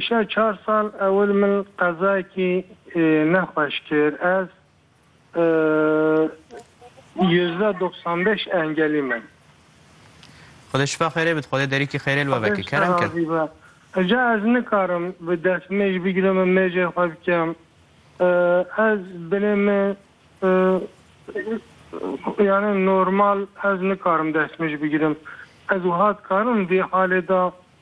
Îşev çar sal ewil min qezayekî nexweş kir. Ez yüzde doksan beş engelî me. Xwedê şifa xêrê bid, Xwedê derîkî xêrê li we veke. Kerem ker. Xwedê ji te razî be. Ca ez nikarim bi destmêj bigirim û mêjê xwe bikim. Ez binê min yanî normal ez nikarim destmêj bigirim. Ez wiha dikarim vê halê de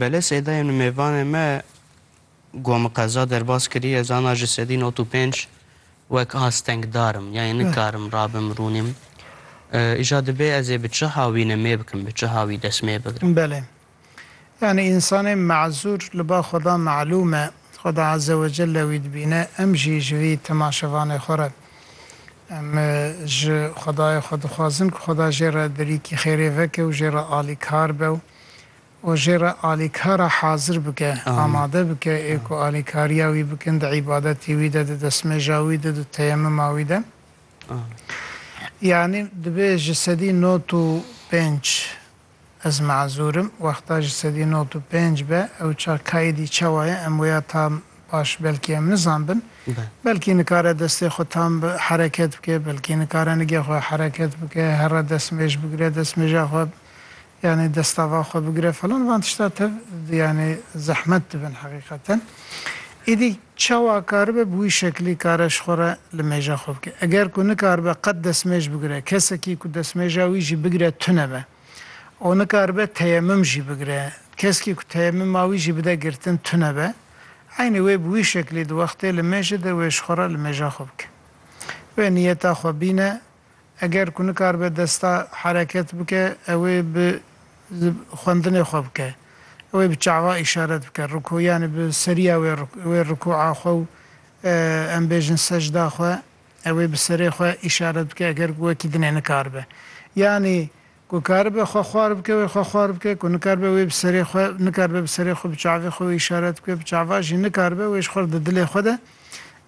Bele sêdayê min mêvanê me ku min qeza derbas kiriye zana ji sedî not û pênc wek astengdar im yanî nikarim rabim rûnîm. Îja dibê ez ê bi çiha wî nimê bikim bi çiha wî destmê bigrim. Belê. Yanî însanê mazûr li ba xweda malûm e. Xweda ezewecelle wî dibîne em jî ji vî timaşevanê xwe re. Em ji Xwedayê xwe dixwazin ku Xweda jê re derîkî xêrê veke û jê re alîkar be û jê re alîkara hazir bike, amade bike ê ku alîkariya wî bikin di îbadetê wî de, di destnûêja wî de, di teyemuma wî de. Yanî dibe ji sedî not û pênc. Ez mazur im wexta ji sedî not û pênc be ew çax kaîdî çawa ye em wêya tam baş belkî em nizanbin. Belkî nikare destê xwe tam bi hereket bike, belkî nikare nigê xwe hereket bike, herre destmêj bigire, destmêja xwe yanî destava xwe bigire falan van tişta tev yanî zehmet dibin heqîqeten. Îdî Çawa karibe bi wî şeklî kare ji xwe re li mêja xwe bike? Eger ku nikaribe qet destmêj bigire, kesekî ku destmêja wî jî bigire tune be û nikaribe teyemum jî bigire, keskî ku teyemuma wî jî bide girtin tune be, eynî wê bi wî şeklî di wextê li mêjê de wê ji xwe re li mêja xwe bike. Wê niyeta xwe bîne. Eger ku nikaribe desta hereket bike, ew ê bi xwendinê xwe bike. Ew ê bi çawa îşaret bike, rikû yanî bi seriya wê wê rikûa xwe û em bêjin secda xwe, ew ê bi serê xwe îşaret bike eger ku wekî dinê nikaribe. Yanî Ku karibe xwe xwar bike wê xwe xwar bike, ku nikaribe wê bi serê xwe nikaribe bi serê xwe bi çavê xwe wê îşaret bike, bi çava jî nikaribe wê ji xwe re di dilê xwe de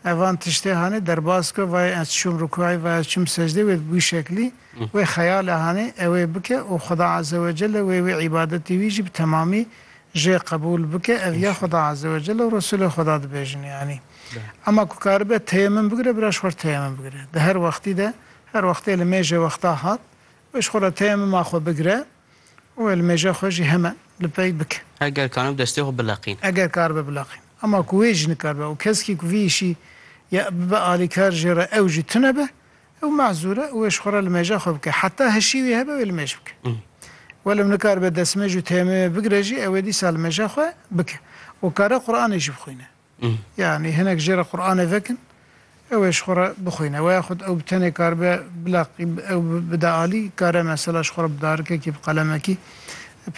ev van tiştê hanê derbas bike, vayê ez çûm rukûayê vayê ez çûm secdeyê wê bi wî şeklî wê xeyalê hanê ew ê bike û Xweda Azewecelle wê wê îbadetê wî jî bi temamî jê qebûl bike ev ya Xweda Azewecelle û Resûlê Xweda dibêjin yanî. Ema ku karibe teyemim bigire bira ji xwe re teyemim bigire di her wextî de her wextê li mêjê wexta hat Weş xwe re teya mima xwe bigire û elmêja xwe jî heme li pey bike. Eger kanibe destê xwe bileqîn. Eger karibe bileqîn. Ema ku wê jî nikaribe û keskî ku vî îşî ya bibe alîkar jê re ew jî tune be, ew mehzûr e û weş xwe re li mêja xwe bike. Heta hişî wê hebe wê li mêj bike. Welim nikaribe destmêj û teya mimê bigire jî ew ê dîsa li mêja xwe bike û kare Quranê jî bixwîne. Yanî hinek jê re Quranê vekin ew ê ji xwe re bixwîne. Weya xwe ew bi tenê karibe bila ew bide alî, kare mesela ji xwe re bi darikekî, bi qalemekî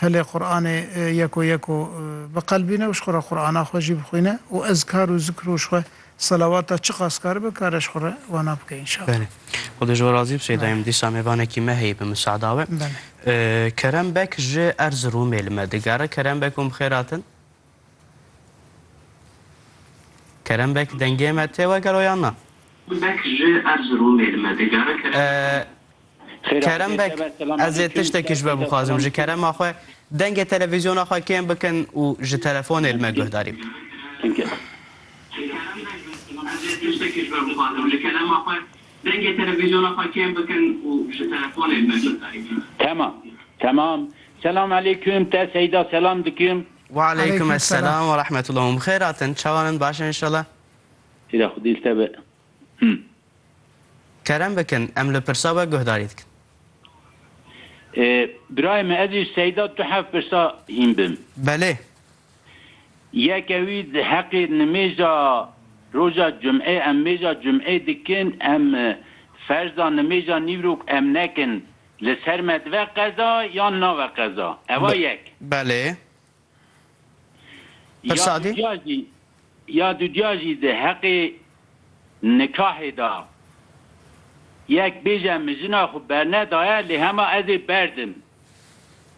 pelê Quranê yeko yeko biqelbîne û ji xwe re Qurana xwe jî bixwîne û ezkar û zikr û ji xwe selawata çiqas karibe kare ji xwe re wana bike înşallah. Belê. Xwedê ji we razî bi sey dayîm. Dîsa mêvanekî me heye bi miseada we. Belê. Kerem Beg ji Erziromê li me digere. Kerem Beg hûn bi xêr hatin. Kerem Beg dengê me tê we gelo yan na? Beg ji Erziromê li me digere Kerem. Kerem Beg ez ê tiştekî ji we bixwazim ji kerema xwe dengê televîzyona xwe kêm bikin û ji telefonê li me guhdarî bikin. Kerem Beg ez ê tiştekî ji we bixwazim ji kerema xwe dengê televîzyona xwe kêm bikin û ji telefonê li me guhdarî bikin. Temam temam Selam aleyküm te Seyda selam dikim. Waleyküm esselam ve rahmetullah hûn bi xêr hatin çawan in baş in inşallah. Seyda xwedî li te be hûn. Kerem bikin em li pirsa we guhdarî dikin. Birayê min ez ji Seyda tu heft pirsa hîn bim. Belê. Yeke wî di heqê nimêja roja cumê em mêja cumê dikin em ferza nimêja nîvrok em nekin Li ser me dive qeza yan nave qeza? Eva yek. Belê. Pirsa dî? Ya dûcîya jî di heqê nikahê da yek bêje min jina xwe bernedaye lê hema ez ê berdim.